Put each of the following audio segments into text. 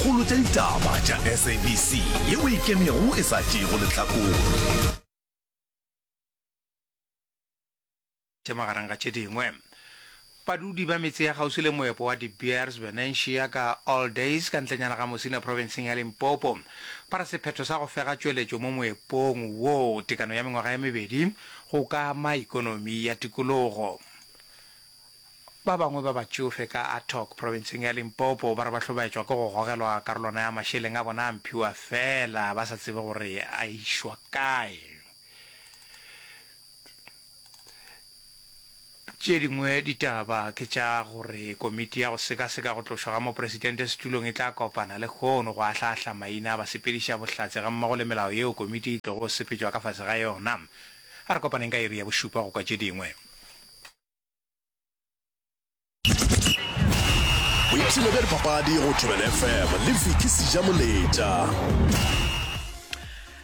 dikgolo tša ditaba tša SABC yeo e ikemego e sa tšeego lehlakore. Tše magareng ga tše dingwe, badudi ba metse ya kgauswi le moepo wa De Beers Venetia ka All Days ka ntlenyana ga Musina profenseng ya Limpopo ba re sephetho sa go fega tšweletšo mo moepong wo tekano ya mengwaga ye mebedi go ka ama ikonomi ya tikologo. Ba bangwe ba batšofe ka Attock, provinseng ya Limpopo, ba re ba hlobaetšwa ke go gogelwa karolwana ya mašeleng a bona a mphiwa feela ba sa tsebe gore a išwa kae. Tše dingwe ditaba ke tša gore komiti ya go sekaseka go tlošwa ga mopresidente setulong e tla kopana lehono go ahla-ahla maina a basepediša bohlatse gammogo le melao yeo komiti e tlogo sepetšwa ka fase ga yona. A re kopaneng ka iri ya bošupa go kwa tše dingwe. boipshino bja dipapadi go tšwebel fm le viki seja moletša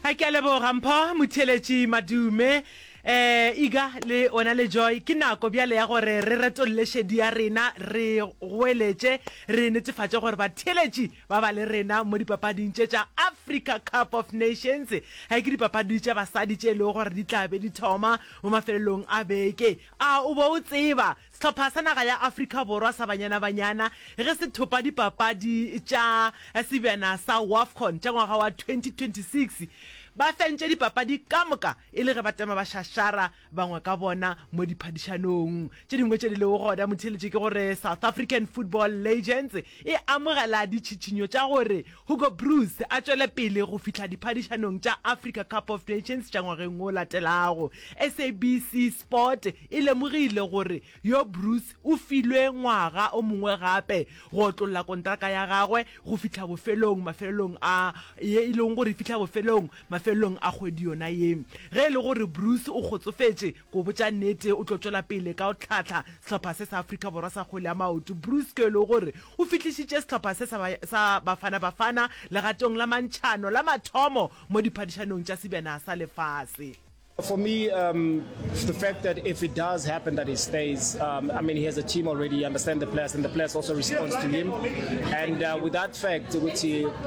a ke a leboga mpho motheletši madume eh iga le ona le joy ke nako bjale ya gore re retolole šedi ya rena re goeletše re netefatše gore batheletši ba ba le rena mo dipapading tše tša africa cup of nations ga ke dipapadi tša basadi tše e lego gore di tla be di thoma Mo mafelelong a beke, a o be o tseba, sehlopha sa naga ya Afrika Borwa sa Banyana Banyana ge se thopa dipapadi tša sebjana sa Wafcon tša ngwaga wa 2026, ba fentše dipapadi ka moka e le ge ba tema bašašara bangwe ka bona mo diphadišanong tše dingwe tše di lego gona. Motheeletše ke gore South African Football Legends e amogela ditšhitšhinyo tša gore Hugo Broos a tšwele pele go fihla diphadišanong tša Africa Cup of Nations tša ngwageng wo latelago. SABC Sport e lemogile gore yo Broos o filwe ngwaga o mongwe gape go otlolla kontraka ya gagwe go fihla bofelong mafelelong a ye e lego gore e fihla bofelong mafelelong a kgwedi yona ye. Ge e le gore Broos o kgotsofetše Go botša nnete, o tlo tšwela pele ka go hlahla sehlopha se sa Afrika Borwa sa kgwele ya maoto. Bruce Kelo o gore o fihlišitše sehlopha se sa sa Bafana Bafana legatong la mantšhano la mathomo mo diphadišanong tša sebjana sa lefase. For me, um, the fact that if it does happen that he stays, um, I mean, he has a team already, he understands the players, and the players also respond to him. And uh, with that fact, which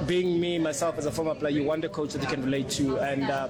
being me, myself as a former player, you want a coach that you can relate to. And uh,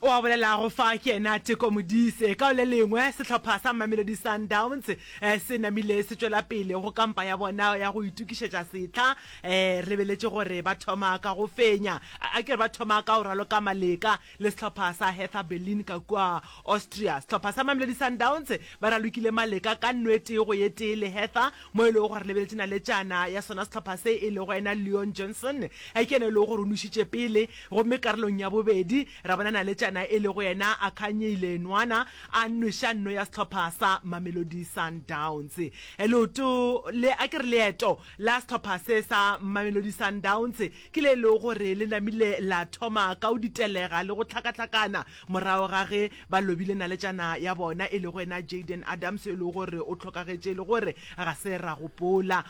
O a bolelago fa ke yena Teko Modise. Ka le lengwe, sehlopha sa Mamelodi Sundowns se namile se tšwela pele go kampa ya bona ya go itokišetša setlha. Re beletše gore ba thoma ka go fenya, a ke re ba thoma ka go raloka maleka le sehlopha sa Hertha Berlin ka kua Austria. Sehlopha sa Mamelodi Sundowns ba ralokile maleka ka nno e tee go ye tee le Hertha mo e lego gore le beletše naletšana ya sona sehlopha se e lego yena Leon Johnson ke yena e lego gore o nušitše pele Gomme karolong ya bobedi, ra bona Naletšana e lego yena a kganyeile enwana a nweša nno ya sehlopha sa Mamelodi Sundowns. Leoto le, a ke re leeto la sehlopha se sa Mamelodi Sundowns ke le e lego gore le namile la thoma ka go ditelega le go hlakahlakana morago ga ge ba lobile Naletšana ya bona e lego yena Jayden Adams yo e lego gore o hlokagetše e le gore ga se ra gopola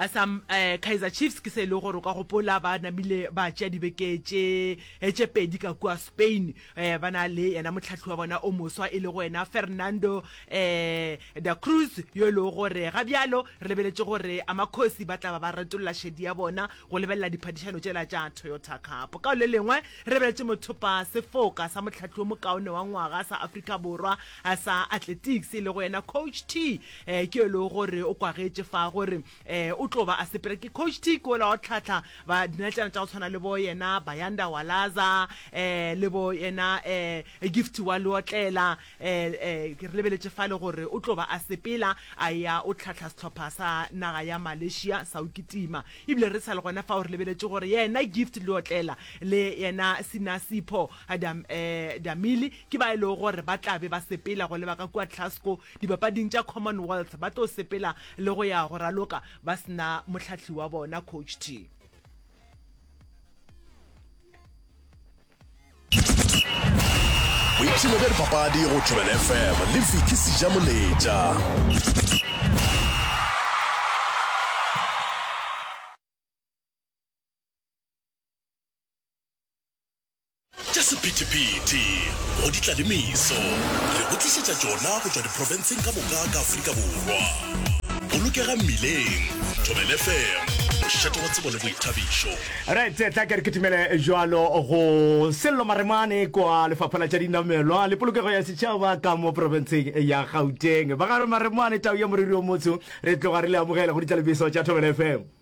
Sa Kaizer Chiefs ke se e lego gore o ka gopola ba namile ba tšea dibeke tše pedi ka kua Spain ba na le yena mohlahli wa bona o moswa e lego yena Fernando Da Cruz yo e lego gore ga bjalo re lebeletše gore Amakhosi ba tla ba ba retolla šedi ya bona go lebelela diphadišano tšela tša Toyota Cup. Ka lelengwe re lebeletše mothopa sefoka sa mohlahli wo mokaone wa ngwaga sa Afrika Borwa a sa Athletics e lego yena Coach T eh, ke yo e lego gore o kwagetše fa gore eh, o tlo ba a sepela ke Coach T ke ola wa go tlhatlha ba dinatšana tša go tshwana le bo yena Bayanda Walaza eh, le bo yena eh, Gift wa Leotlela eh, eh, ke re lebeletše fale gore o tlo ba a sepela a ya o tlhatlha sehlopha sa naga ya Malaysia sa o kitima ebile re sa le gona fa o re lebeletše gore yena Gift Leotlela le yena Sinasipho Adam, eh, Damili Ke ba e lego gore ba tla be ba sepela go leba ka kua Glasgow Dipapading tša Commonwealth, ba tlo sepela le go ya go raloka ba se na mohlahli wa bona, Coach T. Boipshino bja dipapadi go Thobela FM le Vicky Sejamoletša. Tša sephethephethe go ditlalemiso re go tlišetša tšona go tšwa diprofenseng ka moka ka Afrika Borwa. Bolokega mmileng, Thobela FM, mošate wa tsebo le boithabišo. Right, tla ke re ke timele jwalo go Sello Maremane kwa Lefapha la tša Dinamelwa le Polokego ya Setšhaba ka mo profenseng ya Gauteng. Ba ga re Maremane, tau ya moriri o motsho, re tloga re le amogela go ditlalebiso tša Thobela FM.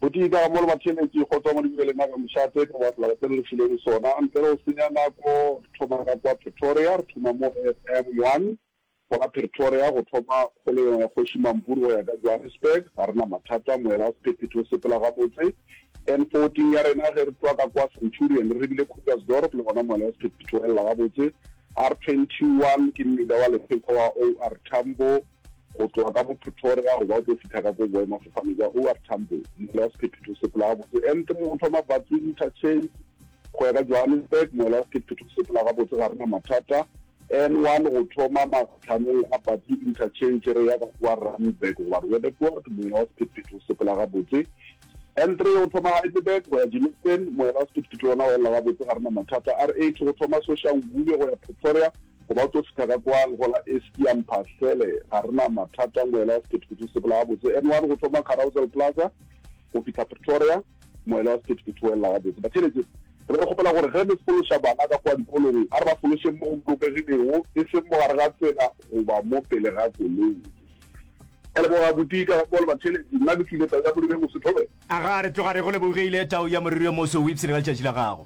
Gotee ka ga mo le batheeletši go tšwa mo Dibibeleng a ka mošaa tee ka baka la batse le re filego sona. Ntle le go senya nako, re thoma ka kwa Pretoria, re thoma mo FM1, gona Pretoria, go thoma go le yona Kgoši Mampuru go ya ka Johannesburg. Ga re na mathata, moela wa sephephethe o sepela gabotse N14 ya rena. Ge re tšwa ka kwa Centurion re lebile Krugersdorp, le gona moela wa sephephethe o elela gabotse. R21 ke mmila wa lepheko wa OR Tambo. Go tloga ka mo Pretoria go ba o tlo fitha ka ko boemafofane bja OR Tambo, mola wa sephephephetho se pela gabotse and mo go thoma Batsi Interchange go ya ka Johannesburg, mola wa sephephephetho se pela gabotse ga rena mathata. N1 go thoma matlhanong a Batsi Interchange re ya ka kwa Randburg goba Roodepoort, mola wa sephephephetho se pela gabotse. N3 go thoma Heidelberg go ya Germiston, mola wa sephephephetho wona o elela gabotse ga rena mathata. R8 go thoma Soshanguve go ya Pretoria, Go ba tso sethaka kwa legola eski ya mpha sele ga re na mathata moela wa sephethephethe o sepela gabotse N one go thoma Carousel Plaza go fihla Pretoria moela wa sephethephethe o elela gabotse Batheeletše re re kgopela gore ge le fološa bana ka kwa dikolong a re ba fološeng mo go bolokegilego e seng mo gare ga tsela goba mo pele ga koloi Ke a leboga Buti ka ga Paul Batheeletše nna ke tlile tau ya moriri yo moso Thobe. Aga re tloga re go lebogile tau ya moriri yo moso o ipsene ka letšatši la gago.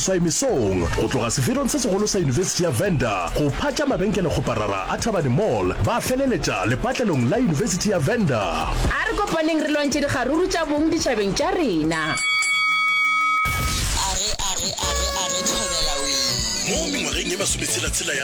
Swaimisong, go tloga sefelong se segolo sa Yunibesithi ya Venda go phatša mabenkelekgoparara a Thabane Mall, ba feleletša lepatlelong la Yunibesithi ya Venda. A re kopaneng re lwantšhe dikgaruru tša bong ditšhabeng tša rena. Age, age, age, age, thobela wee. Mo mengwageng ye masometshela-tshela ya.